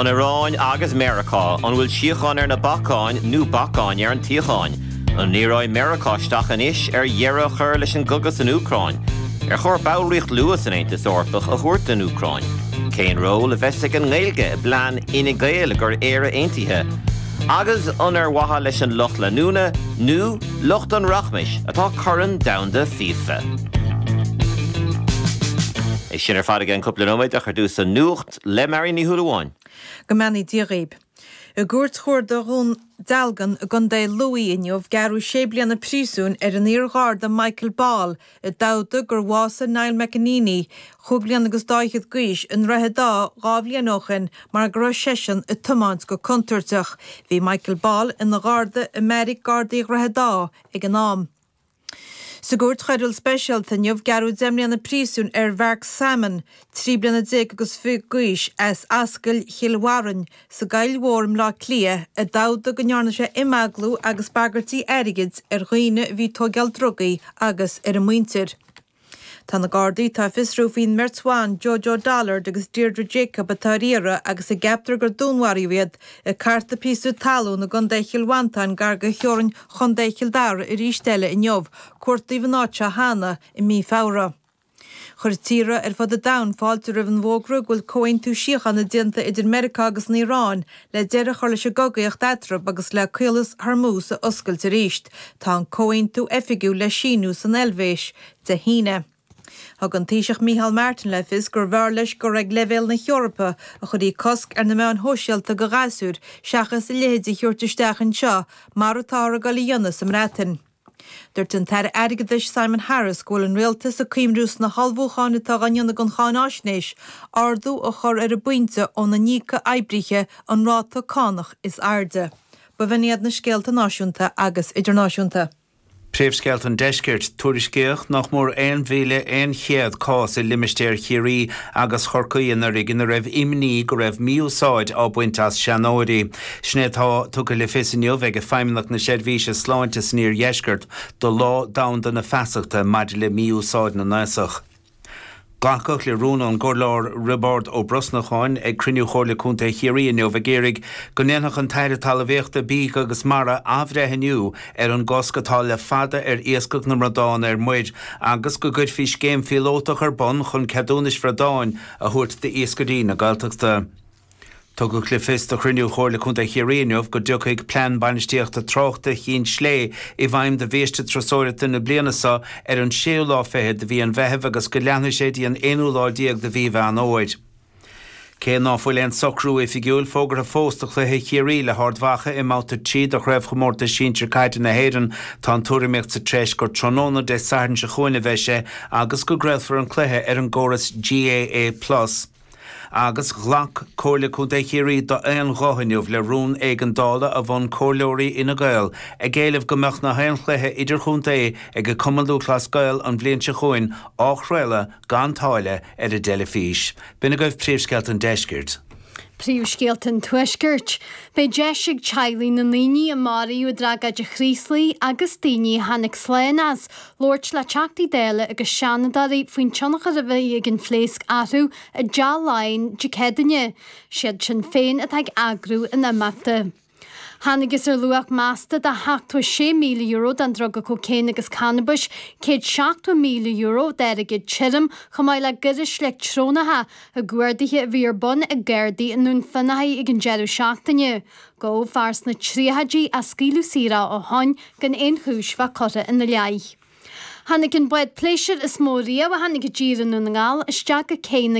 An Iaráin agus Meiriceá, an bhfuil síocháin ar na bacáin nó bacáin ar an tsíocháin? An ndíreoidh Meiriceá isteach anois ar dheireadh a chur leis an gcogadh san Úcráin? Ar chóir ballraíocht luath san Aontas Eorpach a thabhairt don Úcráin? Cén ról a bheas ag an nGaeilge i bplean Fhine Gael i gcomhair Éire Aontaithe? Agus an ar mhaithe leis an lucht leanúna nó, Lucht an rachmais atá Corn Domhanda FIFA. É sin ar fad i gceann cúpla nóiméad ach ar dtús an nuacht le Máirín Ní Shúilleabháin. Go mbeannaí Dia dhaoib. I gCúirt Chuarda Dhún Dealgan i gContae Lú inniu gearradh sé bliana príosúin ar an iar-Gharda Michael Ball A d'admhaigh gur bhásaigh Niall MacEneaney, cúig bliana agus dhá fhichead d'aois, i nDroichead Átha dhá bhliain ó shin mar go raibh seisean ag tiomáint go contúirteach, bhí Michael Ball ina gharda i mbeairic gardaí Dhroichead Átha ag an am. Sa gCúirt Choiriúil Speisialta inniu, gearradh deich mbliana príosúin ar Mhark Salmon, trí bliana déag agus fiche d'aois, as Ascaill Chill Bharrainn, sa gCoill Mhór i mBleá Cliath, a d'admhaigh go ndearna sé imeaglú agus bagairtí airgid ar dhaoine a bhí ag tóigeáil drugaí agus ar a muintir. Tá na Gardaí atá ag fiosrú faoin mbeirt bhan, Jo Jo Dullard agus Deirdre Jacob, atá ar iarraidh agus a gceaptar gur dúnmharaíodh iad, ag cartadh píosa talún i gContae Chill Mhantáin gar do theorainn Chontae Chill Dara arís eile inniu, cuartaíodh an áit seo cheana i mí Feabhra. Chuir tíortha ar fud an domhain fáilte roimh an bhfógra go bhfuil comhaontú síochána déanta idir Meiriceá agus an Iaráin le deireadh a chur leis an gcogaíocht eatarthu agus le Caolas Hormuz a oscailt arís. Tá an comhaontú oifigiúil le síniú san Eilvéis Dé hAoine. Thug an Taoiseach Micheál Martin le fios gurbh fhearr leis gur ag leibhéal na hEorpa a chuirfí cosc ar na meáin shóisialta do ghasúir seachas a leithéid a thabhairt isteach anseo mar atáthar ag dul a dhéanamh sa mBreatain. Dúirt an tAire Airgeadais Simon Harris go bhfuil an Rialtas ag cuimhniú sna hullmhúcháin atá á ndéanamh don cháinaisnéis ardú a chur ar an bpointe óna n-íocfadh oibrithe an ráta cánach is airde. Ba in iad na scéalta náisiúnta agus idirnáisiúnta. Príomhscéalta an Deiscirt, tuairiscíodh nach mór 1,100 cás i limistéar Chiarraí agus Chorcaí anuraidh ina raibh imní go raibh mí-úsáid á baint as seanóirí. Sin é atá tugtha le fios inniu ag Feidhmeannacht na Seirbhíse Sláinte san iardheisceart do Lá Domhanda na Feasachta maidir le Mí-Úsáid na nAosach. Glacadh le rún ón gcomhairleoir Riobard Ó Brosnacháin ag cruinniú Chomhairle Contae Chiarraí inniu ag iarraidh go ndéanfadh an tAire Talamhaíochta, Bídh agus Mara athbhreithniú ar an gcosc atá le fada ar iascach na mbradán ar muir agus go gcuirfí scéim phíolótach ar bun chun ceadúnais bhradáin a thabhairt d'iascairí na Gaeltachta. Tugadh le fios do chruinniú Chomhairle Contae Chiarraí inniu go dtiocfaidh Plean Bainistíochta Tráchta Chinn Sléibhe i bhfeidhm do bhiaiste turasóireachta na bliana seo ar an séú lá fichead de mhí an Mheithimh agus go leanfaidh sé dtí an aonú lá déag de mhí Mheán Fhómhair. Cé ná fuil aon socrú oifigiúil fógartha fós do chluiche Chiarraí le hArd Mhacha i mBabhta 3 de Chraobhchomórtas Sinsear Caide na hÉireann, tá an tuairimíocht sa treis gur tráthnóna Dé Sathairn seo chugainn a bheidh sé agus go gcraolfar an cluiche ar an gcóras GAA Plus. Agus ghlac Comhairle Contae Chiarraí d'aon ghuth inniu le rún éigeandála a mhol comhairleoirí Fhine Gael ag éileamh go mbeadh na haon chluiche idirchontae ag an Cumann Lúthchleas Gael an bhliain seo chugainn á chraoladh gan táille, ar an dteilifís. B'in agaibh Príomhscéalta an Deiscirt. Príomhscéalta an Tuaiscirt. Beidh deis ag teaghlaigh na ndaoine a maraíodh i dtragóid an Chraoslaigh agus daoine a tháinig slán as, labhairt le Teachtaí Dála agus Seanadóirí faoin tionchar a bhí ag an phléasc orthu i dTeach Laighean Dé Céadaoine. Siad Sinn Féin atá ag eagrú an imeachta. Tháinigtheas ar luach measta de sheachtó sé míle euro den druga cócaon agus cannabais, céad seachtó míle euro d'airgead tirim, chomh maith le gairis leictreonacha i gcuardaithe a bhí ar bun ag gardaí i nDún Fionnachaidh ag an deireadh seachtaine. Gabhadh fear sna tríochaidí ach scaoileadh saor é ó shoin gan aon chúis bheith curtha ina leith. Tháinig an bád pléisiúir is mó riamh a tháinig i dtír i nDún na nGall isteach go cé na.